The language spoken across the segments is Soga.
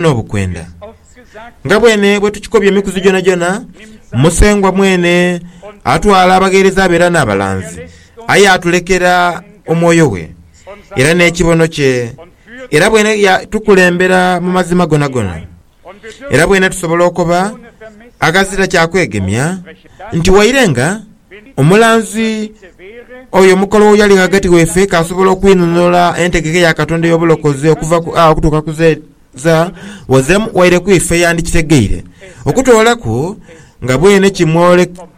n'obukwenda. Nga bwene bwe tukikobya emikuzi gyonagyona, Musengwa mwene atwala abagheereza be era n'abalanzi, aye atulekera omwoyo we era n'ekibono kye, era bwene yaatukulembera mu mazima gonagona. Era bwene tusobola okoba aghazira kya kwegemya nti waire nga. Omulanzi oyo omukolo oyo ali ghagati waife k'asobola okwinunula entegeka ya Katonda ey'obulokozi okuva ku A okutuuka ku Z, Z wazemu waire ku ife yandikitegeire. Okutoolaku nga bwene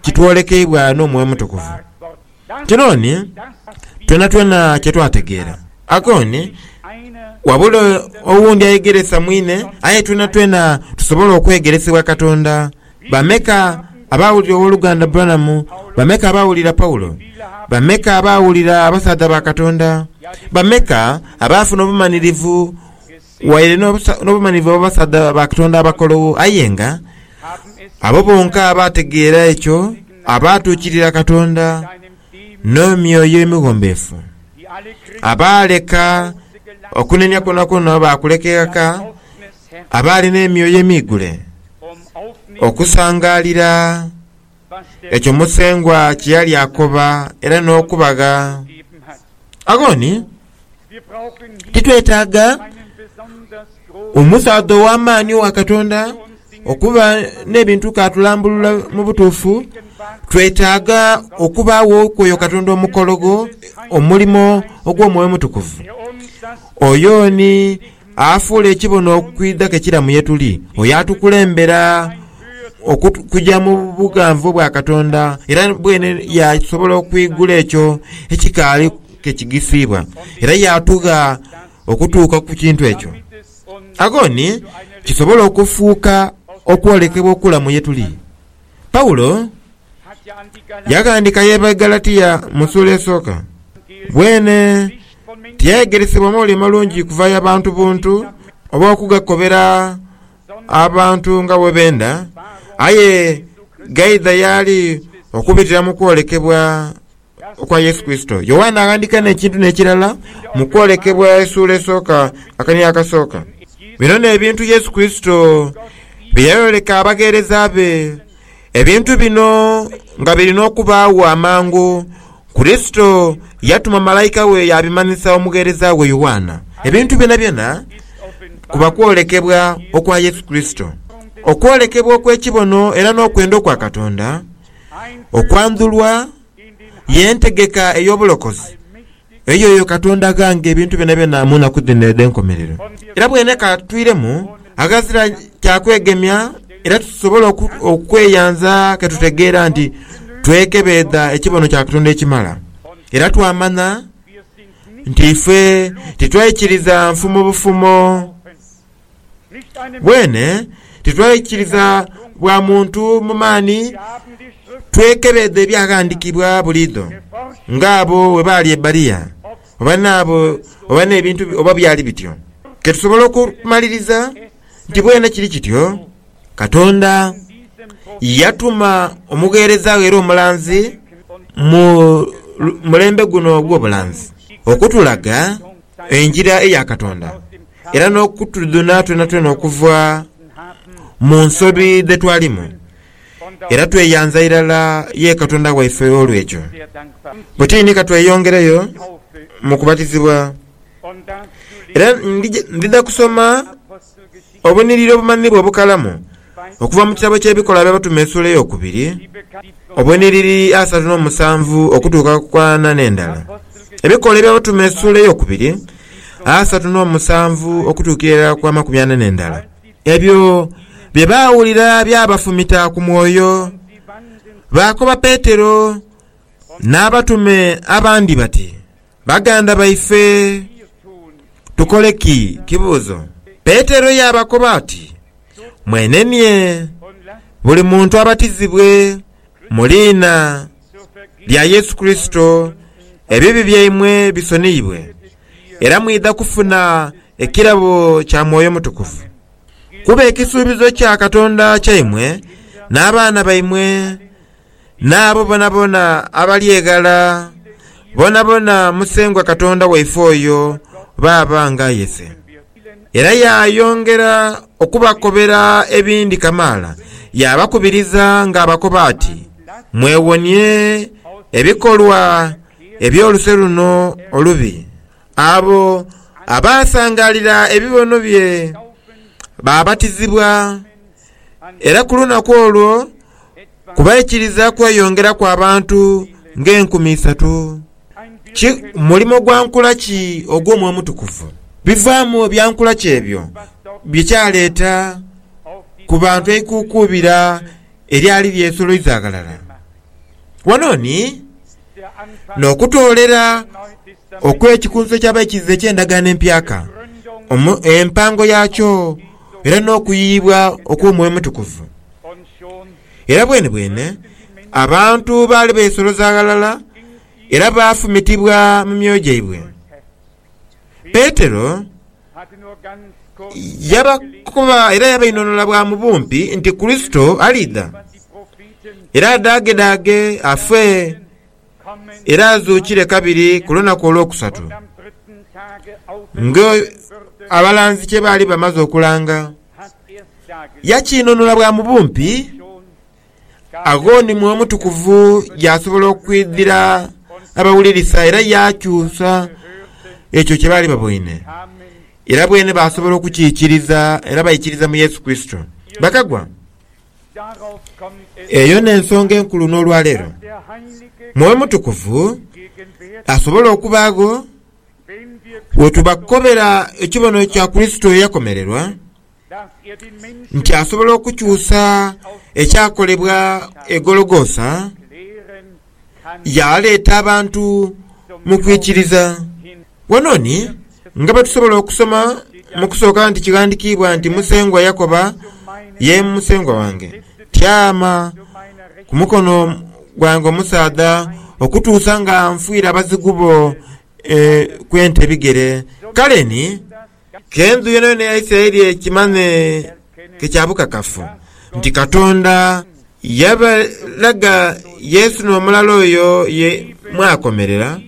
kitwolekeibwa n'Omwoyo Omutukuvu. Kinooni twonatwona kye twategeera. Akooni wabula owundi ayegeresa mwine, aye twonatwena tusobola okwegeresebwa Katonda. Bameka abaawulira Ow'oluganda Branham? Bameka abaawulira Paulo? Bameka abaawulira abasaadha ba Katonda? Bameka abaafuna obumanirivu, waire n'obumanirivu obw'abasaadha ba Katonda abakologho? Aye nga abo bonka abaategeera ekyo, abaatuukirira Katonda n'emyoyo emighombeefu, abaaleka okunenia kwonakwoona baakuleka eghaka, Abaali n'emyoyo emiigule okusangaalira ekyo Musengwa kye yali akoba era n'okubagha aghoni, titwetaaga omusaadha ow'amaani owa Katonda okuba n'ebintu k'atulambulula mu butuufu. Twetaaga okubaagho kw'oyo Katonda omukologho, omulimo ogw'omwoyo omutukuvu. Oyo ni. afuule ekibono okwidha ke kiramu ye tuli, oyo atukulembera okuja mu bughanvu obwa Katonda, era bwene yaasobola okwigula ekyo ekikaali ke kigisiibwa, era yaatugha okutuuka ku kintu ekyo. Aghoni kisobole okufuuka okwolekebwa okulamu ye tuli. Paulo yaaghandiika ye Baigalatia mu suula esooka, bwene tiyayegeresebwa mwoyo mulungi kuva ya bantu buntu oba okugakobera abantu nga bwe benda, aye ghaidha y'ali okubitira mu kwolekebwa okwa Yesu Kurisito. Yoanna aghandiika n'ekintu n'ekirala mu kwolekebwa esuula esooka akania akasooka. Bino n'ebintu Yesu Kurisito bye yayoleka abagheereza be. Ebintu bino nga biri n'okubaagho amangu, Kurisito yatuma malaika we yaabimanhisa omugheereza we Yoanna. Ebintu byonabyona kuba kwolekebwa okwa Yesu Kurisito, okwolekebwa okw'ekibono era n'okwenda okwa Katonda. Okwandhulwa ye ntegeka ey'obulokozi eyoyo Katonda aghanga ebintu byonabyona mu nnaku dhino edh'enkomerero. Era bwene ka twiremu aghazira kya kwegemya era tusobole okweyanza ke tutegeera nti twekebeedha ekibono kya Katonda ekimala, era twamanya nti ife titwaikiriza nfumo bufumo. Bwene titwaikiriza bwa muntu mu maani, twekebeedha Ebyaghandiikibwa buliidho, ng'abo bwe baali e Bberia, oba n'abo oba n'ebintu oba byali bityo. Ke tusobole okumaliriza nti bwene kiri kityo. Katonda yatuma omugheereza we era omulanzi mu mulembe guno ogw'obulanzi okutulaga. engira eya Katonda era n'okutudhuna twonatwona okuva mu nsobi dhe twalimu, era tweyanza irala ye Katonda waife olw'ekyo. Bwe tiri ni ka tweyongereyo mu kubatizibwa. Era ndidha kusoma Obunhiliri obumanhibwa obukalamu okuva mu kitabo ky'Ebikola by'Abatume esuula ey'okubiri, obunhiliri asatu n'omusanvu okutuuka ku ana n'endala. Ebikola eby'Abatume esuula ey'okubiri, asatu n'omusanvu okutuukira irala ku amakumi ana n'endala. Ebyo bye baawulira byabafumita ku mwoyo, baakoba Petero n'abatume abandi bati. Baganda baife, tukole ki? Kibuuzo. Petero yaabakoba ati, Mwenenie, buli muntu abatizibwe mu liina lya Yesu Kurisito, ebibi byaimwe bisoniibwe, era mwidha kufuna ekirabo kya Mwoyo Mutukuvu. Kuba ekisuubizo kya Katonda kyaimwe n'abaana baimwe. N'abo boonaboona abalyeghala, boonaboona Musengwa Katonda waife oyo baaba ng'ayese. Era yaayongera okubakobera ebindi kamaala, yaabakubiriza ng'abakoba ati, Mwewonie ebikolwa eby'oluse luno olubi. Abo abaasangaalira ebibono bye baabatizibwa, Era ku lunaku olwo ku baikiriza kweyongeraku abantu ng'enkumi isatu. Ki mulimo gwa nkula ki ogw'Omwoyo Omutukuvu? Bivaamu bya nkula ki ebyo bye kyaleeta ku bantu eikuukuubira eryali lyesoloiza ghalala? Wano ni n'okutoolera okw'Ekikunso ky'Abaikiriza eky'Endagaano Empyaka, empango yaakyo. era n'okuyiyibwa okw'Omwoyo Omutukuvu. Era bwenebwene abantu baali beesoloza ghalala era baafumitibwa mu myoyo gyaibwe. Petero yabakoba era yabainhonhola bwa mu bumpi nti Kurisito aliidha, era adaagedhaage afe. era azuukire kabiri ku lunaku olwokusatu, ng'abalanzi kye baali bamaze okulanga. Yakinunula bwa mu bumpi, agho ni Mwoyo Mutukuvu yaasobola okwidhira abawulirisa era yaakyusa ekyo kye baali baboine. Era bweene baasobola okukiikiriza era baikiriza mu Yesu Kurisito, bakagwa. Eyo n'ensonga enkulu n'olwaleero. Mwoyo Mutukuvu asobola okubaagho bwe tubakobera ekibonerezo kya Kurisito eyakomererwa, nti asobola okukyusa ekyakolebwa e Gologoosa, yaaleeta abantu mu kwikiriza. Wano ni nga bwe tusobola okusoma mu kusooka nti kighandikiibwa nti Musengwa yakoba, ye Musengwa wange tyama ku mukono gwange omusaadha okutuusa nga nfwire abazigu bo e, ku ente ebigere. Kale ni K'endhu yonayona eya Isiraeli ekimanye ke kya bukakafu nti Katonda yabalaga Yesu n'omulala oyo ye mwakomerera,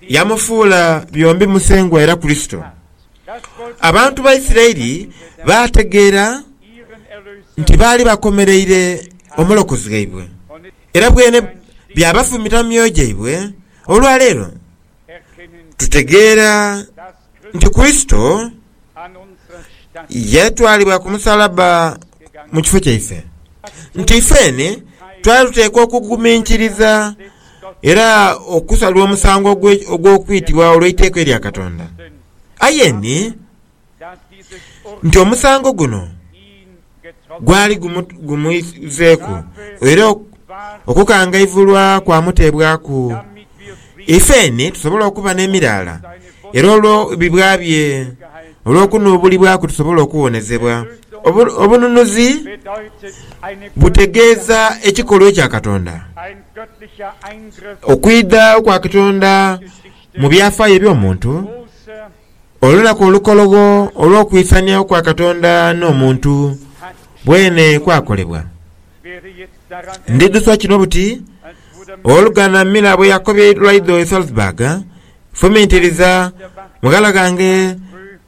yamufuula byombi Musengwa era Kurisito. Abantu ba Isiraeli baategeera nti baali bakomereire Omulokozi waibwe, era bwene byabafumita mu myoyo gyaibwe olwa leero. Tutegeera nti Kurisito yatwalibwa ku musalaba mu kifo kyaife, nti ifeeni twali tuteekwa okuguminkiriza era okusalwa omusango ogw'okwitibwa olw'eiteeka erya Katonda. Aye ni nti omusango guno gwali gumwizeeku era okukangaivulwa kwamuteebwaku ifeni tusobole okuba n'emiraala era olwo bibwa bye olw'okunuubulibwaku tusobole okuwonezebwa. Obununuzi butegeeza ekikolwa ekya Katonda, okwidha kwa Katonda mu byafaayo eby'omuntu. Olunaku olukologho olw'okwisanhiagho kwa Katonda n'omuntu bwene kwakolebwa. Ndidhusa kino buti, Oluganda Miller bwe yakobye eidula idho e Salzburg, Fumintiriza, mughala ghange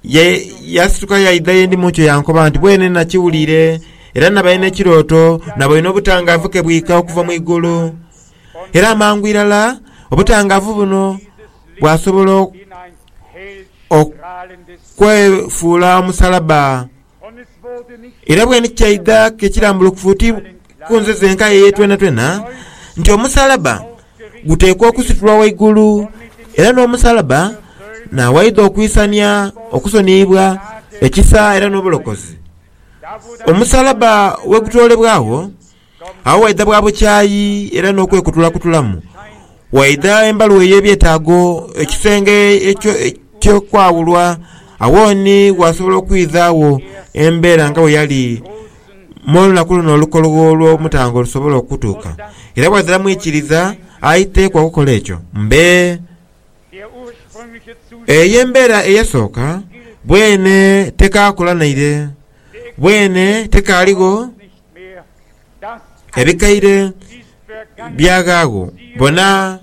yaasituka yaidha ye ndi mu nkyo yankoba nti, Bwene nakiwuliire, era nabaire n'ekirooto, naboine obutangaavu ke bwika okuva mu igulu. Era amangu irala obutangaavu buno. bw'asobola okwefuula omusalabba. Era bweni kyaidha ke kirambulukufu oti ku nze zenka eye twenatwena nti omusalabba guteekwa okusitulwa waigulu, era n'omusalabba naawaidha okwisania okusoniyibwa, ekisa, era n'obulokozi. Omusalabba bwe gutoolebwagho, Agho waidha bwa bukyayi era n'okwekutulakutulamu. Waidha embalu ey'ebyetaago, ekisenge eky'okwawulwa. Agho ni waasobola okwidhaagho embeera nga bwe yali mu lunaku luno olukologho olw'omutango lusobola okutuuka. Era bw'adha mwikiriza aiteekwa okukola ekyo. Mbe. Eyo embeera eyasooka bwene tekaakola naire. Bwene tekaaligho. Ebikaire by'aghaagho bona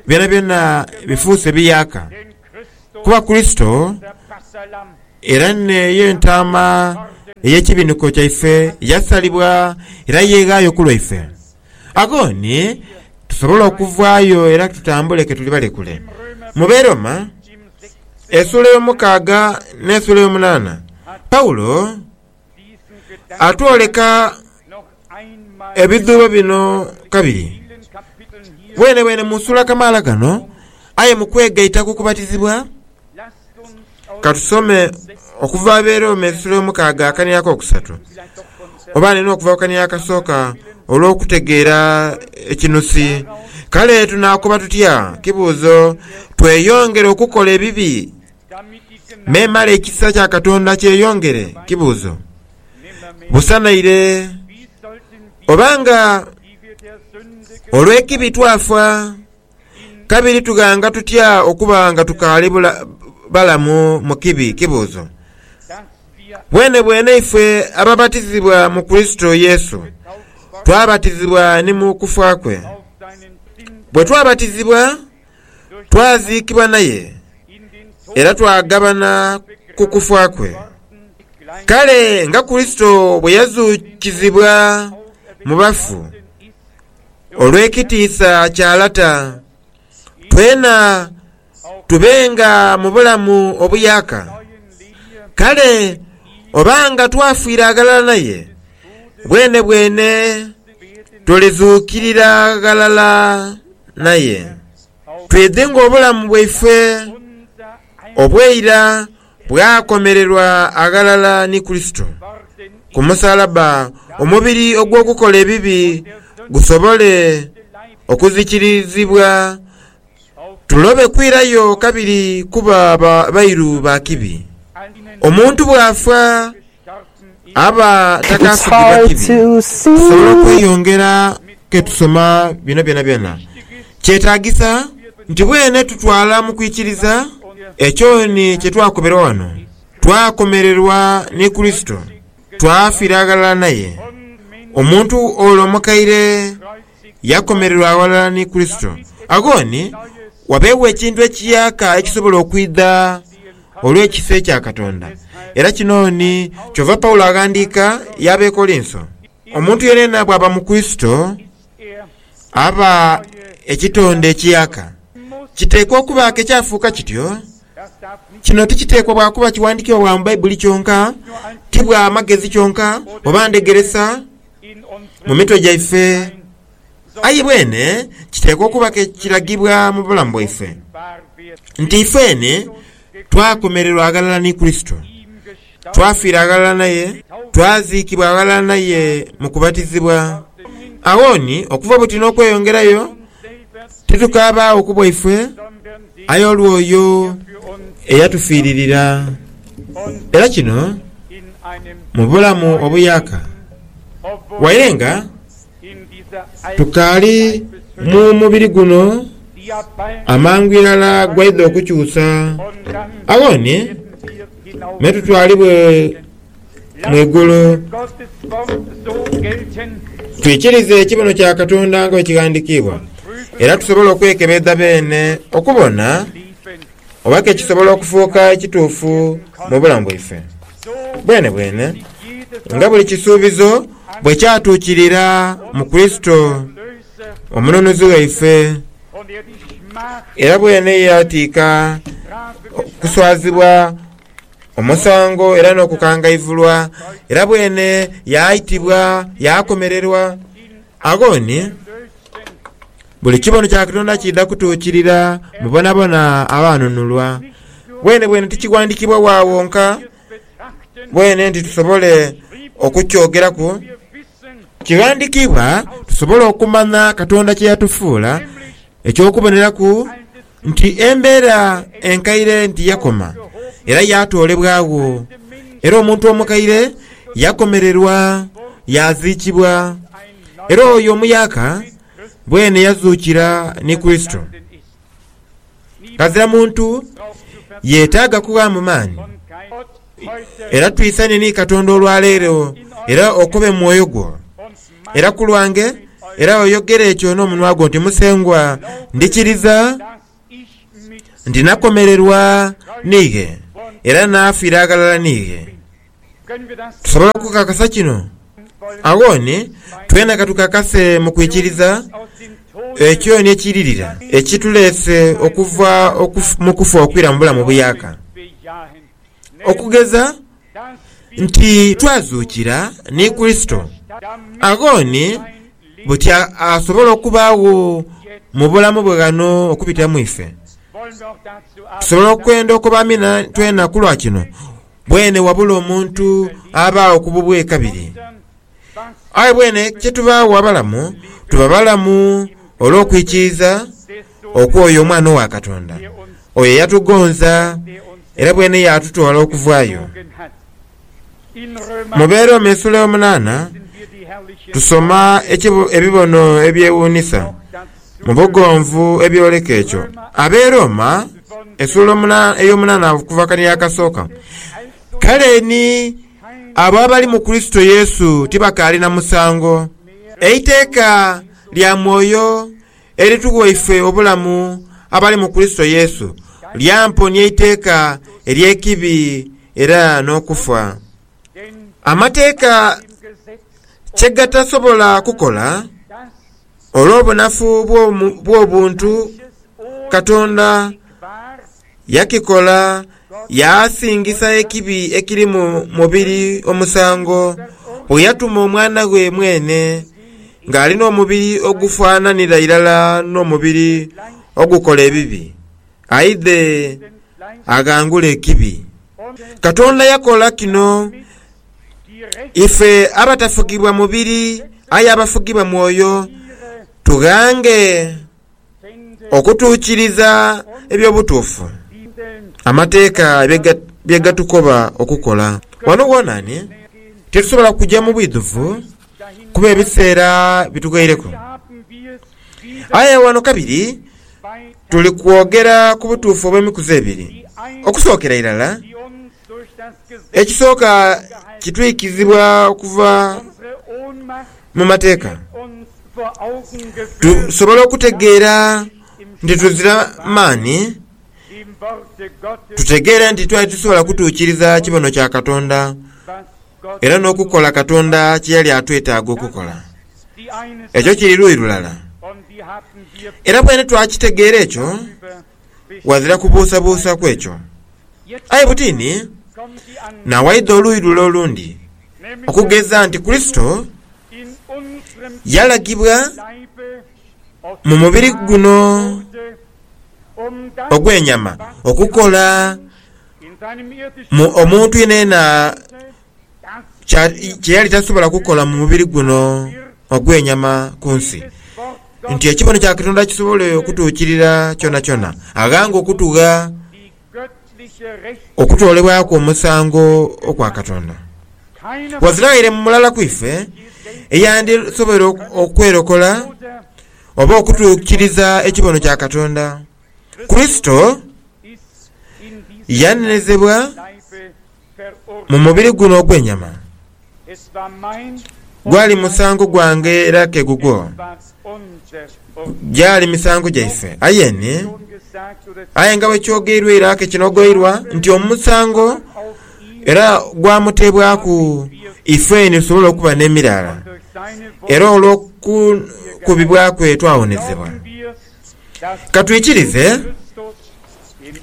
byonabyona bifuuse biyaaka, kuba Kurisito era n'eyo entaama ey'ekibinhiko kyaife yasalibwa era yeeghaayo ku lwaife. Agho ni tusobola okuvaayo era tutambule ke tuli balekule. Mu Beroma esuula ey'omukaaga n'esuula ey'omunaana, Paulo. atwoleka ebidhuubo bino kabiri bwenebwene mu suula kamaala kano. Aye mu kwegaita ku kubatizibwa, ka tusome okuva Abeerooma eisula omukaaga akania ak'okusatu, oba ni n'okuva ku kania akasooka olw'okutegeera ekinusi. Kale tunaakoba tutya kibuuzo tweyongere okukola ebibi? memale ekisa kya Katonda kyeyongere. Kibuuzo, Busanaire oba nga olw'ekibi twafa, kabiri tughanga tutya okuba nga tukaali balamu mu kibi? Kibuuzo, Bwenebwene ife ababatizibwa mu Kurisito Yesu, twabatizibwa ni mu kufa kwe. Bwe twabatizibwa, Twaziikibwa naye era twagabana ku kufa kwe. Kale nga Kurisito bwe yazuukizibwa mu bafu olw'ekitiisa kya Lata, twena tubenga mu bulamu obuyaaka. Kale oba nga twafira aghalala naye, bwenebwene tulidhuukirira ghalala naye, twidhi ng'obulamu bwaife obw'eira bwakomererwa aghalala ni Kurisito ku musalabba, omubiri ogw'okukola ebibi gusobole okuzikirizibwa, tulobe kwirayo kabiri kuba bairu ba kibi. Omuntu bw'afa Aba takaasugibwa kibi kusobola okweyongera ke tusoma bino byonabyona. Kyetaagisa nti bwene tutwala mu kwikiriza ekyo ni kye twakomerwa wano, twakomererwa ni Kurisito, twafiira ghalala naye, omuntu ole omukaire, Yaakomererwa ghalala ni Kurisito. Agho ni wabeegho ekintu ekiyaaka ekisobola okwidha olw'ekisa ekya Katonda. Era kino ni kyova Paulo aghandiika y'Abekolinso, Omuntu yenayena bw'aba mu Kurisito, aba ekitonde ekiyaaka. Kiteekwa okuba ke kyafuuka kityo. Kino tikiteekwa bwa kuba kiwandiikibwa bwa mu Baibuli kyonka, ti bwa magezi kyonka, oba ndhegeresa. mu mitwe gyaife, aye bwene kiteekwa okuba ke kiragibwa mu bulamu bwaife nti ifeene twakomererwa aghalala ni Kurisito, twafiira aghalala naye, twaziikibwa aghalala naye mu kubatizibwa, agho ni okuva buti n'okweyongerayo, Titukaabaawo ku bwaife, aye olw'oyo eyatufiiririra. Era kino mu bulamu obuyaaka, waire nga tukaali mu mubiri guno, amangu irala gwaidha okukyusa, agho ni me tutwalibwe. mu igulu. Twikirize ekibono kya Katonda nga bwekighandikiibwa era tusobole okwekebedha beene okubona oba ke kisobola okufuuka ekituufu mu bulamu bwaife. Bwenebwene nga buli kisuubizo bwe kyatuukirira mu Kurisito Omununuzi waife, era bwene ye yatiika okuswazibwa Omusango era n'okukangaivulwa, era bwene yaaitibwa, yaakomererwa. Agho ni buli kibono kya Katonda kiidha kutuukirira mu bonabona abaanunulwa. Bwenebwene tikighandiikibwa wa wonka bwene nti tusobole okukyogeraku. Kighandiikibwa tusobole okumanya Katonda kye yatufuula eky'okuboneraku. nti embeera enkaire nti yakoma era yaatoolebwagho, era omuntu omukaire yakomererwa yaaziikibwa, era oyo omuyaaka bwene yazuukira ni Kurisito. Ghazira muntu yetaaga kughaamu maani, era twisane ni Katonda olwa leero era okobe mwoyo gwo. era ku lwange, era oyogere ekyo n'omunwa gwo nti, Musengwa, ndikiriza nti nakomererwa niighe era naafira aghalala niighe. Tusobola okukakasa kino? Agho ni twena ka tukakase mu kwikiriza ekyo ni ekiiririra ekituleese okuva mu kufa okwira mu bulamu obuyaaka. Okugeza. nti twazuukira ni Kurisito, agho ni buti asobola okubaagho mu bulamu bwe ghano okubitira mu ife? Tusobola okwenda okoba amina twena ku lwa kino? Bwene wabula omuntu abaagho ku bubwe kabiri. Aye bwene kye tubaagho abalamu, tuba balamu olw'okwikiriza okw'oyo Omwana owa Katonda, oyo eyatugonza era bwene yaatutwala okuvayo. Mu Beeroome esuula yomunaana tusoma ebibono ebyewuunisa mu bugonvu ebyoleka ekyo. Abeerooma esuula eyomunaana okuva akaniiro akasooka. Kale ni. Abo abali mu Kurisito Yesu tibakaali na musango. Eiteeka lya mwoyo eritughwa ife obulamu abali mu Kurisito Yesu lyamponia eiteeka ery'ekibi era n'okufa. Amateeka kye gatasobola kukola, olw'obunafu bw'obuntu, Katonda yakikola yaasingisa ekibi ekiri mu mubiri omusango bwe yatuma Omwana ghe mwene ng'ali n'omubiri ogufaananira irala n'omubiri ogukola ebibi, aidhe aghangule ekibi. Katonda yakola kino ife abatafugibwa mubiri aye abafugibwa Mwoyo tughange. Okutuukiriza eby'obutuufu amateeka bye gatukoba okukola. Wano wonani titusobola kuja mu bwidhuvu kuba ebiseera bitughaireku. Aye wano kabiri tuli kwogera ku butuufu obw'emikuzi ebiri. Okusookera irala, Ekisooka, kitwikizibwa okuva mu Mateeka tusobole okutegeera nti tuzira maani, tutegeere nti twali titasobola kutuukiriza kibono kya Katonda era n'okukola Katonda kye yali atwetaaga okukola. Ekyo kiri luuyi lulala. Era bwene twakitegeera ekyo, ghazira kubuusabuusa ku ekyo. Aye butini, naawaidha oluuyi lule olundi okugeza nti Kurisito yalagibwa mu mubiri guno ogw'enyama okukola mu omuntu yenayena. kye yali tasobola kukola mu mubiri guno ogw'enyama ku nsi, nti ekibono kya Katonda kisobole okutuukirira kyonakyona, aghange okutugha okutoolebwaku omusango okwa Katonda. Waziraire mulala ku ife eyandisobweire okwerokola oba okutuukiriza ekibono kya Katonda. Kurisito yanenezebwa. mu mubiri guno ogw'enyama, gwali musango gwange era ke gugwo gyali misango gyaife. Aye ni? Aye nga bwe kyogeirwa era ke kinogoirwa nti omusango era gwamuteebwaku ifeni tusobole okuba n'emiraala, era olw'okukubibwa kwe twawonezebwa. Ka twikirize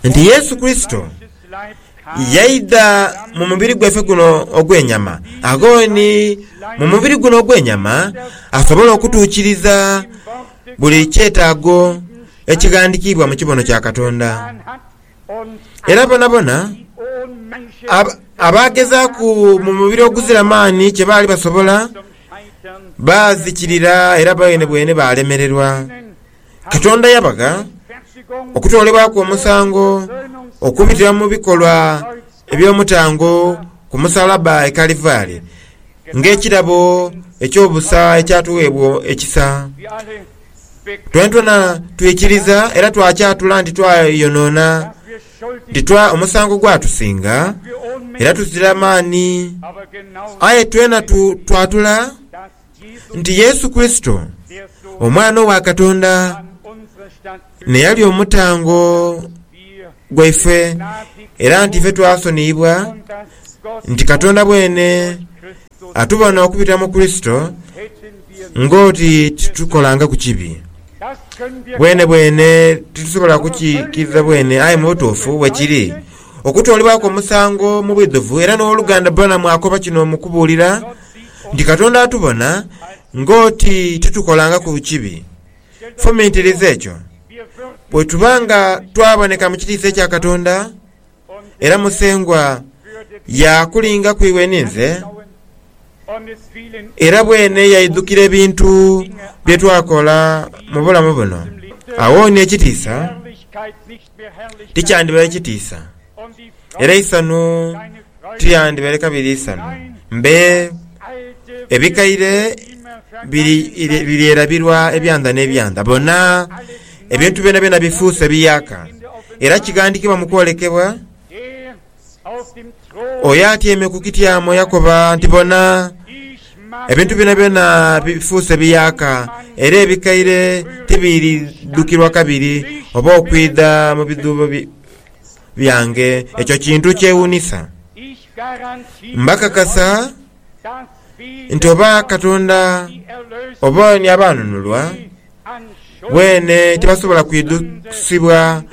nti Yesu Kurisito yaidha mu mubiri gwaife guno ogw'enyama, agho ni mu mubiri guno ogw'enyama asobole okutuukiriza buli kyetaago ekighandikiibwa mu kibono kya Katonda. Era bonabona abaagezaaku mu mubiri oguzira maani kye baali basobola, baazikirira era bwenebwene baalemererwa. Katonda yabagha okutoolebwaku omusango okubitira mu bikolwa Eby'omutango ku musalaba e Kalivari ng'ekirabo eky'obusa ekyatuweebwa ekisa. Twenatwena twikiriza era twakyatula nti twayonoona, nti twa omusango gwatusinga, era tuzira maani. Aye twenatwatula nti Yesu Kurisito, Omwana owa Katonda, n'eyali omutango gwaife, era nti ife twasoniyibwa, nti Katonda bwene atubona okubitira mu Kurisito ng'oti titukolangaku kibi. Bwenebwene titusobola kukikirira bwene, aye mu butuufu bwekiri. Okutoolebwaku omusango mu bwidhuvu, era n'Owoluganda Branham akoba kino mu kubuulira. nti Katonda atubona ng'oti titukolangaku kibi. Fumintiriza ekyo. Bwe tuba nga twaboneka mu kitiisa ekya Katonda, era Musengwa yaakulinga ku iwe ni nze, era bwene yaidhukira ebintu bye twakola mu bulamu buno, agho ni ekitiisa! tikyandibaire kitiisa, era eisanhu tilyandibaire kabiri isanhu. Mbe, ebikaire biryerabirwa ebyandha n'ebyandha. Bona, ebintu byonabyona bifuuse biyaaka, era kighandhikibwa mu kwolekebwa. Oyo atyaime ku kityamo yakoba nti, Bona, ebintu byonabyona bifuuse biyaaka, era ebikaire tibiridhukirwa kabiri oba okwidha mu bidhuubo byange. Ekyo kintu kyewuunisa! Mbakakasa nti oba Katonda oba ni abaanunulwa, Bwene tibasobola kwidhusibwa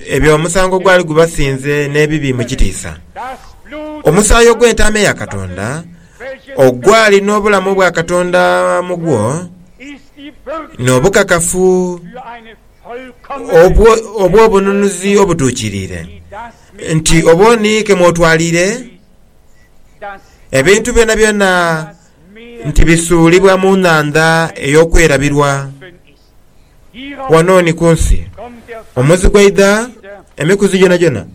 ebyo omusango ogwali gubasinze n'ebibi mu kitiisa. Omusaayi ogw'entaama eya Katonda, ogwali n'obulamu bwa Katonda mu gwo, n'obukakafu obw'obununuzi obutuukiriire, nti obwo ni ke mw'otwaliire ebintu byonabyona. nti bisuulibwa mu nhandha ey'okwerabirwa. Ghano ni ku nsi omuzi gwaidha emikuzi gyonagyona.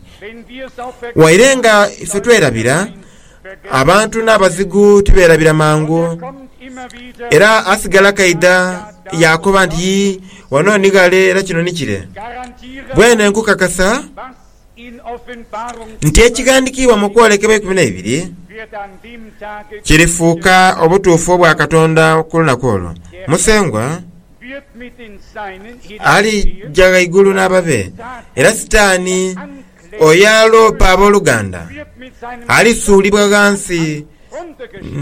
Waire nga ife twerabira, abantu n'abazigu tibeerabira mangu. Era asigala kaidha yaakoba nti, Yii, ghano ni ghale era kino ni kire. Bwene nkukakasa nti ekighandikiibwa mu Kwolekebwa eikumi n'eibiri kirifuuka obutuufu obwa Katonda ku lunaku olwo. Musengwa alija ghaigulu n'ababe, era Sitaani oyo aloopa aboluganda alisuulibwa ghansi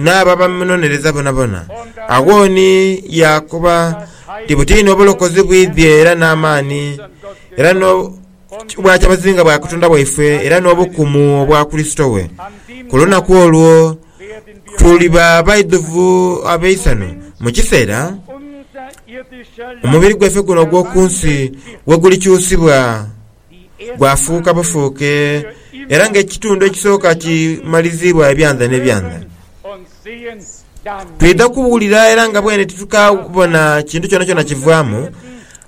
n'abo abamunonereza bonabona. Agho ni yaakoba nti, Butini obulokozi bwidhie era n'amaani era Kibwa kyabazinga bwa Katonda waifwe era n'obukumu obwa Kurisito we. Ku lunaku olwo tuliba baidhuvu ab'eisanhu mu kiseera omubiri gwaife guno ogw'oku nsi wegulikyusibwa gwafuuka bufuuke era ng'ekitundu ekisooka kimaliziibwa ebyanza n'ebyanza. Twidha kuwulira era nga bwene titukabona kintu kyonakyona kivaamu,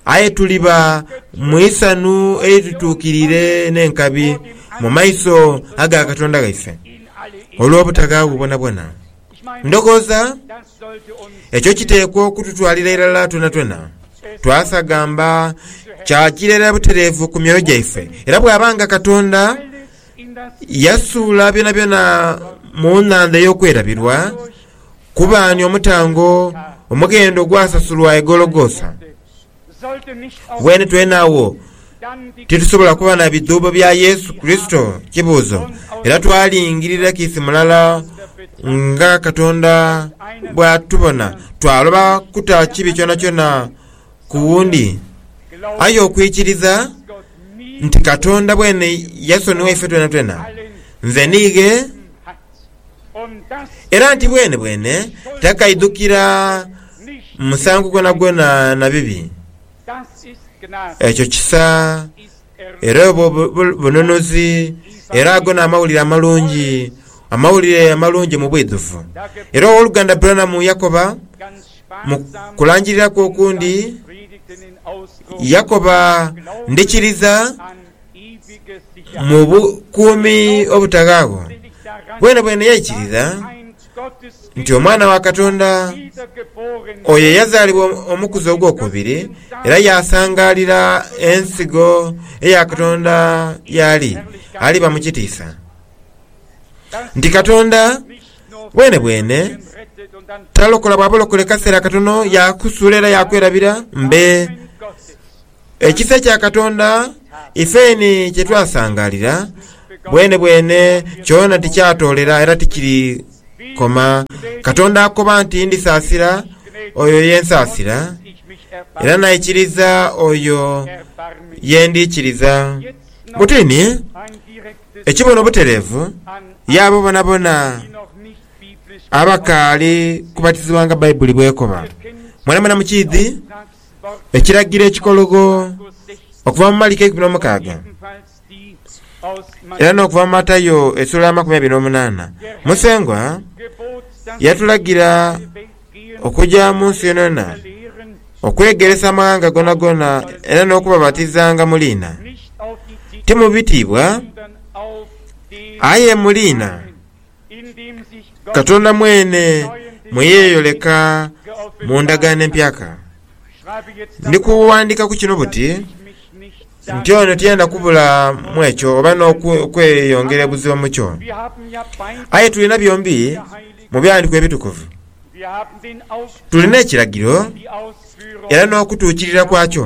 aye tuliba mu isanhu eitutuukirire n'enkabi mu maiso aga Katonda waife olw'obutaghaawo bwonabwona. Ndhoghoza ekyo kiteekwa okututwalira irala twonatwona. Twasagamba kya kireera butereevu ku myoyo gyaife, era bw'aba nga Katonda Yasuula byonabyona mu nhandha ey'okwerabirwa, kubaani omutango omughendo ogwasasulwa e Gologotha? Weene twena agho titusobola kuba na bidhuubo bya Yesu Kurisito? Kibuuzo. Era twalingirira kiisi mulala nga Katonda bw'atubona, twaloba kuta kibi kyonakyona ku wundi. Aye okwikiriza nti Katonda bwene yasonigha ife twenatwena nze niighe, era nti bwenebwene takaidhukira musango gwonagwona na bibi, ekyo kisa era obwo bununuzi, era ago n'amawulire amalungi, amawulire amalungi mu bwidhuvu. Era Ow'oluganda Branham yakoba Mu kulangirira kwe okundi, yakoba, Ndhikiriza mu bukuumi obutaghaagho. Bwenebwene yaikiriza nti Omwana wa Katonda oyo eyazaalibwa omukuzi ogwokubiri era yaasangaalira ensigo eya Katonda y'ali, aliba mu kitiisa. Nti Katonda Bwenebwene talokola bw'abalokole kaseera katono, yaakusuula era yaakwerabira mbe. Ekisa kya Katonda ifeeni kye twasangaalira bwenebwene kyona tikyatoolera era tikirikoma. Katonda akoba nti, Ndisaasira oyo ye nsaasira, era naikiriza oyo ye ndiikiriza. Butini. ekibono butereevu y'abo boonaboona abakaali kubatizibwa nga Baibuli bw'ekoba. Mwenamwena mukiidhi ekiragiro ekikologho okuva mu Maliki eikumi n'omukaaga era n'okuva mu Matayo esula ya makumi abiri n'omunaana. Musengwa yatulagira okuja mu nsi yonayona, okwegeresa amaghanga gonagona, era n'okubabatizanga mu liina, ti mu bitiibwa, aye mu liina Katonda mwene mwe yeeyoleka mu ndagaano empyaka. Ndi kughandika ku kino buti, nti ono tiyenda kubula mu ekyo oba n'okweyongera ebuziba mu kyo. Aye tulina byombi Mu Bighandiiko Ebitukuvu tulina ekiragiro era n'okutuukirira kwakyo.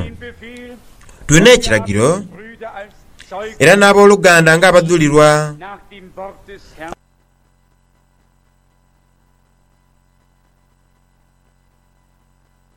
Tulina ekiragiro era n'aboluganda ng'abadhulirwa.